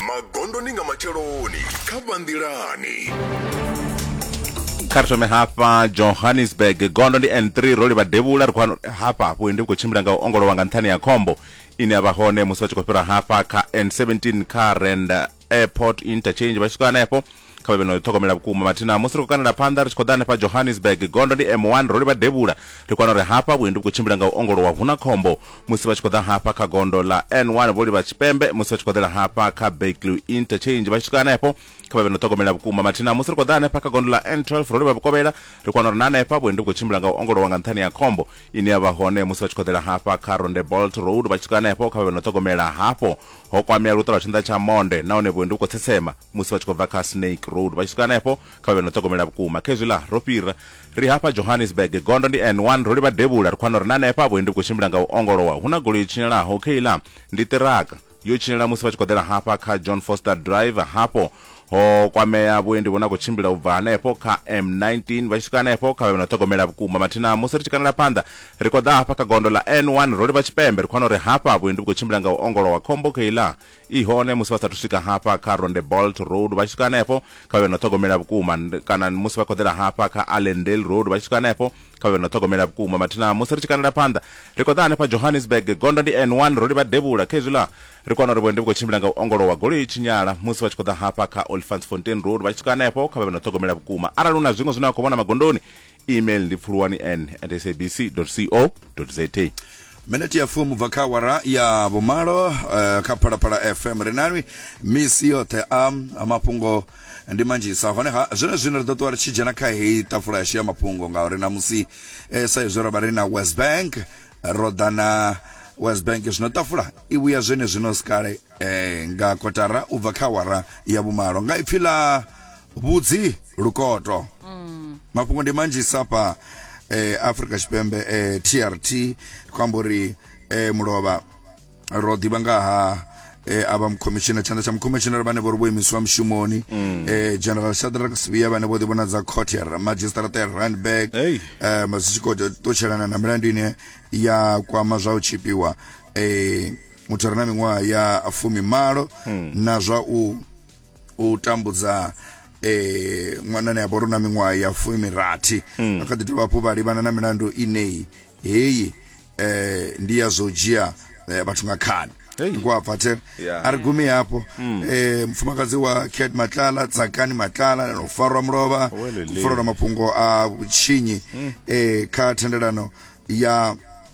magondoni nga matsheloni kha vhanḓilani kha ri thome hafha johannesburg gondo ndi n3 ro livha devhula ri khou wana uri hafha hafhu ndi khou tshimbila nga u ongolowa nga nṱhani ya khombo ine ya vha hone musi vha tshi khou fhira hafha kha n17 kha rand airport interchange vha tshi swika hanefho Kha vha vhe no ḓi ṱhogomela vhukuma. Mathina musi ri khou kandela phanḓa ri tshi khou ḓa hanefha Johannesburg, gondo ndi M1, ro livha devhula. Ri kwana uri hafha vhuendi vhu khou tshimbila nga u ongolowa, hu na khombo. Musi vha tshi khou ḓa hafha kha gondo ḽa N1 vho livha tshipembe, musi vha tshi khou ḓela hafha kha Beekloo Interchange vha tshi swika hanefho. Kha vha vhe no ṱhogomela vhukuma. Mathina musi ri khou ḓa hanefha kha gondo ḽa N12 ro livha vhukovhela, ri kwana uri na hanefha vhuendi vhu khou tshimbila nga u ongolowa nga nṱhani ha khombo ine ya vha hone musi vha tshi khou ḓela hafha kha Rondebolt Road vha tshi swika hanefho. Kha vha vhe no ṱhogomela hafho. ho kwamea luṱo lwa tshinḓa tsha monde nahone vhuendi vhu khou tsetsema musi vha tshi khou bva kha snake road vha tshi swika hanefho kha vhe no ṱhogomela vhukuma khezwiḽa ro fhira ri hafha johannesburg gondo ndi n1 ro livha devhula ri khwana uri na hanefha vhuendi vhu khou tshimbila nga u ongolowa hu na golo yo tshinyalaho kheiḽa ndi ṱiraka yo tshinyala musi vha tshi khou ḓela hafha kha john foster drive hafho ho kwamea vhuendi vhune a khou tshimbila u bva hanefho kha m19 vha tshi swika hanefho kha vhe na ṱhogomela vhukuma mathina musi ri tshi kanela phanḓa ri khou ḓa hafha kha gondo ḽa n1 ro livha tshipembe ri khou wana uri hafha vhuendi vhu khou tshimbila nga u ongolowa khombo kheiḽa i hone musi vha sathu swika hafha kha ronde bolt road vha tshi swika hanefho kha vhe na ṱhogomela vhukuma kana musi vha khoḓela hafha kha allendale road vha tshi swika hanefho kha vhe no ṱhogomela vhukuma mathina musi ri tshi kandela phanḓa ri khou ḓa hanefha johannesburg gondo ndi n1 ro livha devhula kha izwi ḽa ri kwana uri vhuendi vhu khou tshimbila nga u ongolowa goloi tshinyala musi vha tshi khou ḓa hafha kha olifants fontain road vha tshi swika hanefho kha vha vhe no ṱhogomela vhukuma arali hu na zwiṅwe zwine vha khou vhona magondoni email ndi pfuluwani n at sabc co za minete ya fumi bva kha wara ya vhumalo eh, kha phalaphala fm ri nalwi misi yoṱhe a a mafhungo ndi manzhisa honeha zwone zwino ri ḓo ṱuwa ri tshi dzhena kha heyi tafula yashu ya mafhungo ngauri namusi eh, sa izwi ro vha ri na west bank ro ḓa na west bank zwino tafula i vhuya zwene zwino sikale eh, nga kotara u bva kha wara ya vhumalo nga ipfi ḽa vhudzi lukoto mafhungo ndi manzhi sapa eh, africa tshipembe eh, trt ri khou amba uri eh, mulovha ro ḓivha nga ha eh, ava mukhomishinara tshanḓa tsha mukhomishinara vhane vho ri vho imiswa mushumoni eh, general shadrack sivia vhane vho ḓivhonadza court ya Ra- magistrate ya randburg Hey. eh, zwi tshi khou ṱutshelana na milandu ine ya kwama zwa u tshipiwa eh, muthu a re na miṅwaha ya fumi malo na zwa u u tambudza eh ṅwanani a vhori na miṅwaha ya fumirathi a kha ḓi dovha hafhu vha livhana na milandu ineyi heyi eh ndi ya zwo dzhia eh, vhathu nga khani Hey. ngwapfathela Yeah. a ri gumi hafho eh mufumakadzi wa cat matlala tsakani matlala no farwa mulovha Welele. kufarwa mafhungo a vhutshinyi eh kha thendelano ya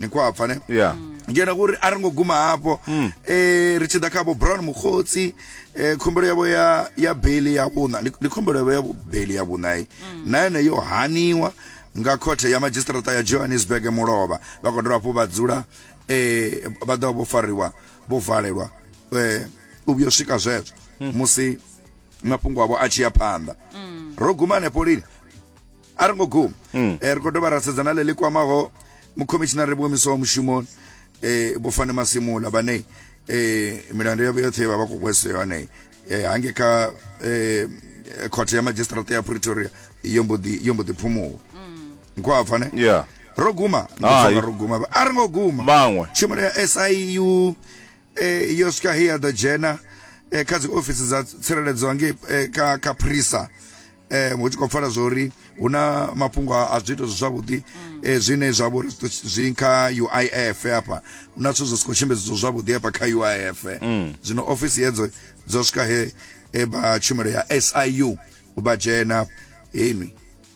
ni khou apfa ne Yeah. ngena kuri a ri ngo guma hafho um ri tshi ḓa kha vho brown mukhotsi um khumbelo yavho ya ya beli ya vhuṋa ndi ndi khumbelo yavho ya beli ya vhuṋai na yone yo haniwa nga khothe ya madzhisiṱirata ya johannesburg mulovha vha khou dovha hafhu vha dzula um vha ḓovha vho fariwa vho valelwa um u vhuyo swika zwezwo musi mafhungo avho a tshi ya phanḓa ro guma hanefho lini a ri ngo guma mm. eh, ri khou dovha ra sedzana ḽe ḽi kwamaho mukhomishinari vhuomiso wa mushumo eh, bofane masimula vhane eh, milandu yavho yoṱhe vha vha khou hweswa yone eh, hange kha eh, khothe ya magistrate ya pretoria yo mbo ḓi phumuwa mm. nkhwapfa ne yeah. ro guma ro guma a ri ngo guma tshumelo ya siu eh, yo swika he ya ḓo dzhena eh, kha dzi ofisi dza tsireledzo ngei eh, ka, ka prisa eh, hu tshi khou pfala zwa uri hu na mafhungo a a zwiito zwi zwavhuḓi eh, zwine zwa vha uri zwi ḓo- zwi kha uif hafha hu na zwithu zwi si khou tshimbedziwa zwavhuḓi hafha kha uif zwino ofisi hedzo dzo swika he eh, vha tshumelo ya siu vha dzhena heni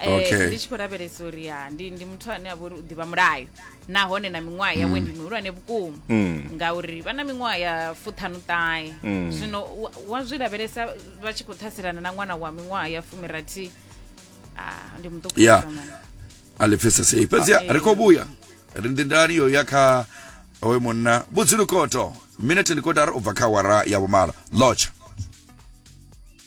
Eh, Okay. ndi tshi khou lavhelesa uri ya ndi ndi muthu ane a vha uri u ḓivha mulayo nahone na miṅwaha yawe ndi mihulwane vhukuma Mm. ngauri vha na miṅwaha ya fuṱhanu ṱahe Mm. zwino wa- wa zwi lavhelesa vha tshi khou ṱhaselana na ṅwana wa miṅwaha ya fumirathi ah, ndi muṱuku Yeah. nga maanḓa. a lifhisa sei fhedzi Ah, ri khou vhuya ri ndindani yo ya kha oyo munna vhudzilukoto minete ndi kotara u bva kha awara ya vhumalo lotsha